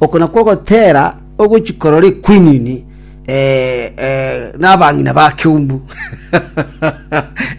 Oko nakwo ogotera ogochia korora equinini nabang'ina ba keumbu.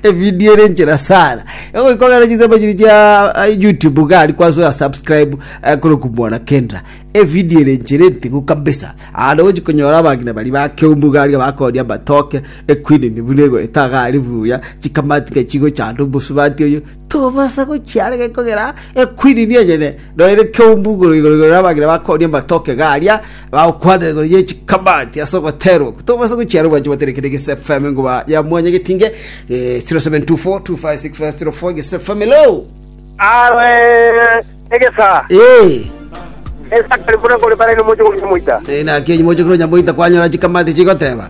Evidio ere enchera sana. Egoika ogere chisemo chiri chia YouTube iga ari kwasura subscribe eh, koroku mwana Kendra. Evidio ere enchera enting'u kabisa. Ande ogochia konyora abang'ina bari ba keumbu iga aria bakoria amatoke, equinini buna egoeta iga ari buya, chikamatika chigochanda omosubati oyo, Tobasa gochia are gekogera ekwinini enyene, nonya nekeumbu igoro igoro igoro nabang'ina bakoonia amatoke iga aria, bagokwanera igoro ye chikamati ase ogoterwa okwo. Tobasa gochia are obwanchwa botere kende gese FM enguma ya mwanya getinge, eh, 0724256504 gese FM hello. Awe egesa Eh, esakari buna kore bare no mojo kore moita eh, naki enye moche kuro nyamoita kwanyora chikamati chigoteba.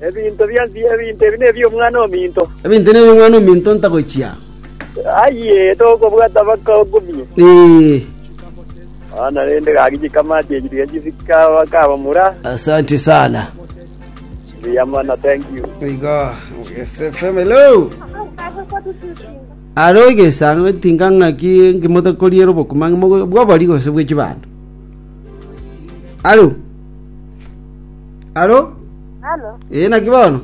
Ebinto bi'ense ebinto ebi nebi'omwana ominto. Ebinto ebi nebi'omwana ominto ntagochia. Aye, togobwata mpaka okobie. Ee. Bono rende gaki chikamati echi tiga chisika bakabamura. Asante sana. Buya mono, thank you. Igo, SFM, hello. Aro igesango tinga ng'aki ngimote koriera obokuma bwobori gose bw'echibando. Alo. Halo? Halo? Ee, naki bono?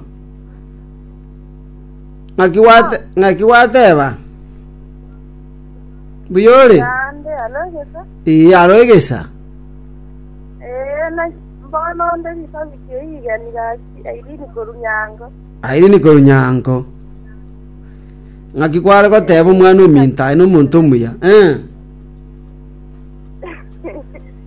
Ng'aki gwate, ng'aki gwateba? Mbuya ore? Naende, halo egesa? Ee, halo egesa. Ee, naki mbono onde gikobi ki'eigani gaki Irene korwa Nyango. Irene korwa Nyango. Ng'aki kware goteba omwana ominto aye nomonto omuya. Eh.